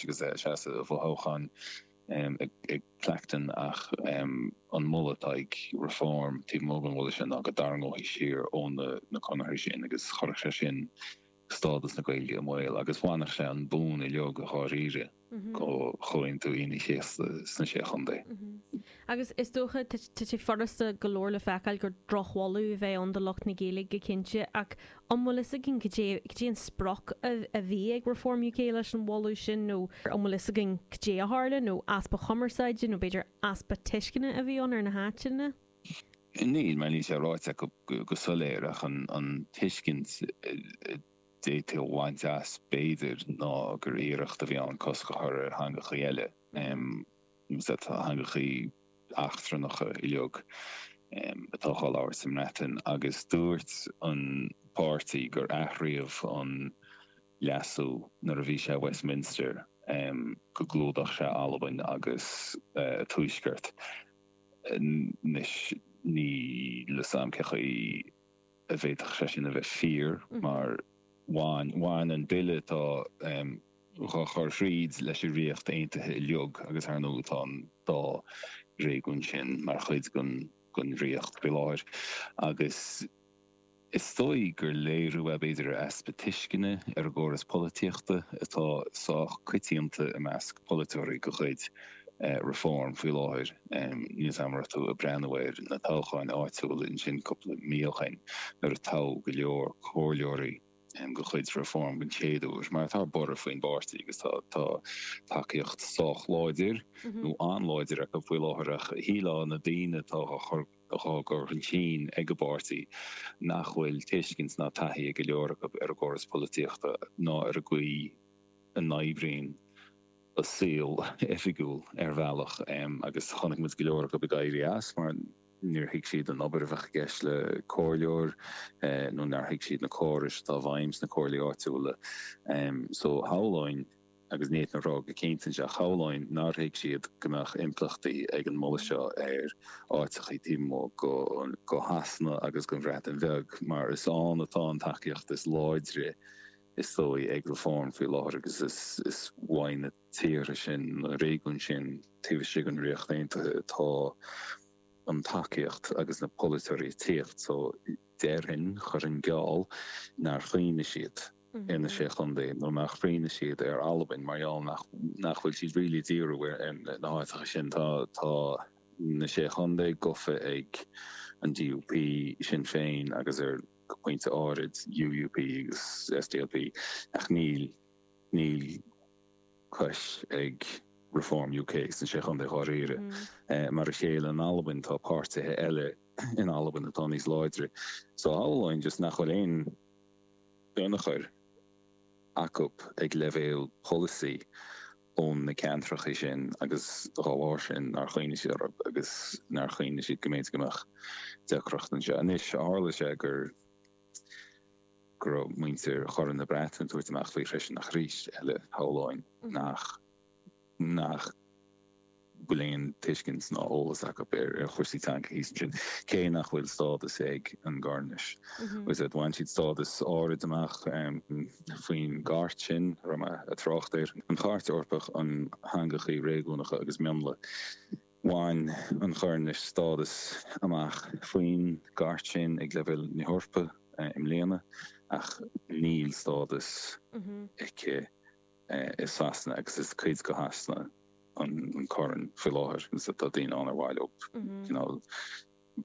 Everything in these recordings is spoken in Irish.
agus é ag seasamh i bhfothoghchán i gClacton ach an moladh atá ag Reform taobh amuigh den mholadh sin ná go dtarraingeofaí siar ó na conarthaí sin agus chuirfeadh sé sin stádas na Gaeilge i mbaol agus bhainfeadh sé an bonn uilig dáiríre ó Chomhaontú Aoine an Chéasta sna Sé Chontae. Agus is dócha, tá sé furasta go leor le feiceáil gur drochmholadh a bheadh ann do lucht na Gaeilge go cinnte, ach an bhfuil fhios againn cad é cad é an sprioc a bhí ag Reform UK leis an mholadh sin nó an bhfuil fhios againn cad é a tharla, nó easpa cumarsáide nó b'fhéidir easpa tuisceana a bhí ann ar na háiteanna? Níl, mar níl sé ráite acu go soiléir, ach an tuiscint a d'fhéadfaí a bhaint as b'fhéidir ná gur iarracht a bhí ann cosc a chur ar theangachaí eile. Teangacha eachtrannacha uilig atá dhá labhairt sa mBreatain agus dúirt an páirtí gur athraíodh an leasú nuair a bhí sé i Westminster go gclúdódh sé Albain agus an Tuaisceart. Anois níl 'fhios a'm cé chaoi. a bhféadfadh sé sin a bheith fíor mar bhain, bhain an bille atá dhá chur thríd leis an Ríocht Aontaithe uilig agus ar ndóigh tá an dá réigiún sin mar chuid den Ríocht faoi láthair agus is dóigh gur léiriú é b'fhéidir ar easpa tuisceana ar an gcóras polaitíochta atá sách coitianta i measc polaiteoirí de chuid Reform faoi láthair. Níl a fhios a'm an raibh tú ag breathnú ar na toghcháin áitiúla ansin cúpla mí ó shin nuair a toghadh go leor comhairleoirí de chuid Reform den chéad uair, mar tá borradh faoin bpáirtí agus tá, tá tacaíocht sách láidir, nó an-láidir acu faoi láthair ach shílfeá na daoine atá dhá gcur chun cinn ag an bpáirtí nach bhfuil tuiscint ná taithí ag go leor acu ar an gcóras polaitíochta ná ar an gcaoi a n-oibríonn an saol oifigiúil ar bhealach agus chonaic muid go leor acu ag éirí as mar níor thuig siad an obair a bheadh i gceist le comhairleoir nó nár thuig siad na córais atá i bhfeidhm sna comhairlí áitiúla so shamhlóinn, agus ní fhéadfainn a rá go cinnte anseo, shamhlóinn nár thuig siad go mbeadh impleachtaí ag an moladh seo ar áiteachaí taobh amuigh de Shasana agus den Bhreatain Bheag mar is ann atá an tacaíocht is láidre. is dóigh, ag Reform faoi láthair agus is uaidh na tíortha sin, na réigiúin sin taobh istigh den Ríocht Aontaithe atá an tacaíocht agus na polaiteoirí ag tíocht so déarfainn, chuirfinn geall, nár chuimhnigh siad ar na Sé Chontae nó nár chuimhnigh siad ar Albain mar gheall nach bhfuil siad really ag díriú ar na háiteacha sin. Tá na Sé Chontae gofa ag an DUP, Sinn Féin agus ar. go pointe áirid, UUP agus SDLP, ach níl, níl cos ag Reform UK sna Sé Chontae dháiríre. Mar a chéile in Albain, tá páirtithe eile in Albain atá níos láidre, so shamhlóinn just nach bhfuil aon tionchar acu ag leibhéal polasaí. ó na ceantracha sin agus dá bharr sin nár chuimhnigh siad orthu agus nár chuimhnigh siad go mb'fhéidir go mbeadh deacracht anseo. Anois tharla sé go raibh muintir Chorn na Breataine ag tabhairt amach faoi freisin ach arís eile shamhlóinn nach bhfuil aon tuiscint ná eolas acu ar chúrsaí teanga thíos ansin, cé nach bhfuil stádas ag an gCoirnis. Is ea, bhain siad stádas áirid amach faoin gCairt sin, a raibh mé ag trácht air, an Chairt Eorpach um Theangachaí Réigiúnacha agus Mionlaigh. Bhain an Choirnis stádas amach faoin gCairt sin ag leibhéal na hEorpa i mbliana, ach níl stádas aici, i Sasana agus is cuid de Shasana an Corn faoi láthair agus tá daoine ann ar mhaith leo cineál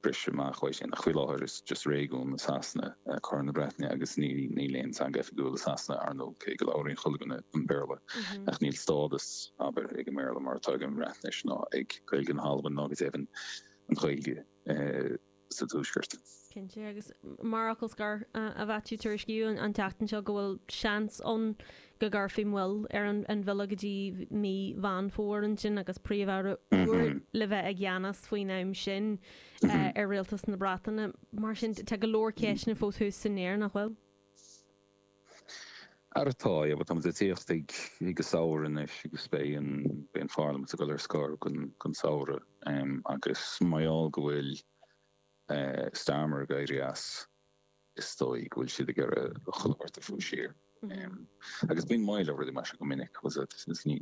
briseadh amach uaidh sin ach faoi láthair is just réigiún i Sasana é Corn na Breataine agus níl aon teanga oifigiúil i Sasana ar ndóigh cé go labhraíonn chuile dhuine an Béarla ach níl stádas abair ag an mBéarla mar atá ag an mBreatnais ná ag Gaeilge na hAlban ná go deimhin an Ghaeilge. sa Tuaisceart. Cinnte, agus mar fhocal scoir, a Mhaitiú, tuairiscíodh an tseachtain seo go bhfuil seans ann go gcuirfí moill ar an bhille go dtí mí Mheán Fómhair ansin agus Príomh-Aire úr le bheith i gceannas faoin am sin ar Rialtas na Breataine. Mar sin, tá go leor ceisteanna fós thuas san aer, nach bhfuil? Ara tá, abair, tá muid ag tíocht ag an samhradh anois agus beidh an Pharlaimint ag dul ar scor don samhradh agus mar gheall go bhfuil Starmer ag éirí as is dóigh go bhfuil siad ag iarraidh chuile shórt a bhrú siar agus bíonn moill ar rudaí mar sin go minic agus ní